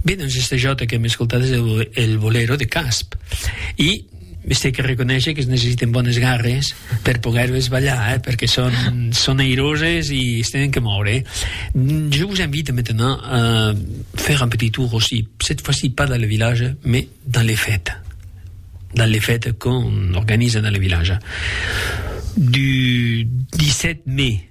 Be doncs este jo que hem escoltat és el, el bolero de Casp. I este que reconèixer que es necessiten bones garres per poder-les ballar, eh? perquè són, són airoses i es tenen que moure. Mm, jo vos invite maintenant a fer un petit tour aussi, cette fois-ci pas dans le village, mais dans les fêtes. Dans les fêtes qu'on organise dans le village. Du 17 mai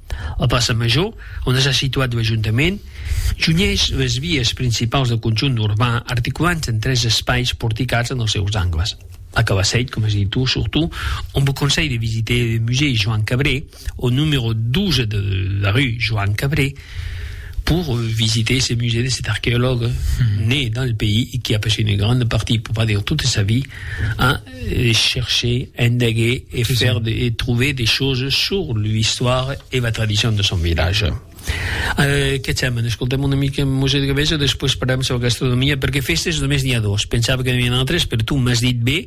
La plaça Major, ont es assituat lo ajuntament, junhís las vias principaus del conjunt urban articulant en tres espais porticats en els seus angles. La Cabassèit, coma es dit tu, surtout, ont vos conselh de visiter le musée Joan Cabré, au numero 12 de la rue Joan Cabré, pour visiter ce musée de cet archéologue né dans le pays et qui a passé une grande partie, pour pas dire toute sa vie, a chercher, indaguer e faire de e trouver des choses sur l'histoire e la tradition de son village. Euh, que cèm? N'escoltèm una mica Musèu de Gavesa, después parlèm sò gastronomia, perque fèstes només n'i a dos, pensava que n'i avián autres, per tu m'as dit bé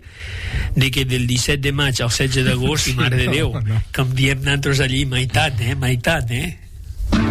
de que del 17 de maig al 16 d'agost, i Mare de Déu, com diem nantros allí, maitat, eh? Maitat, eh?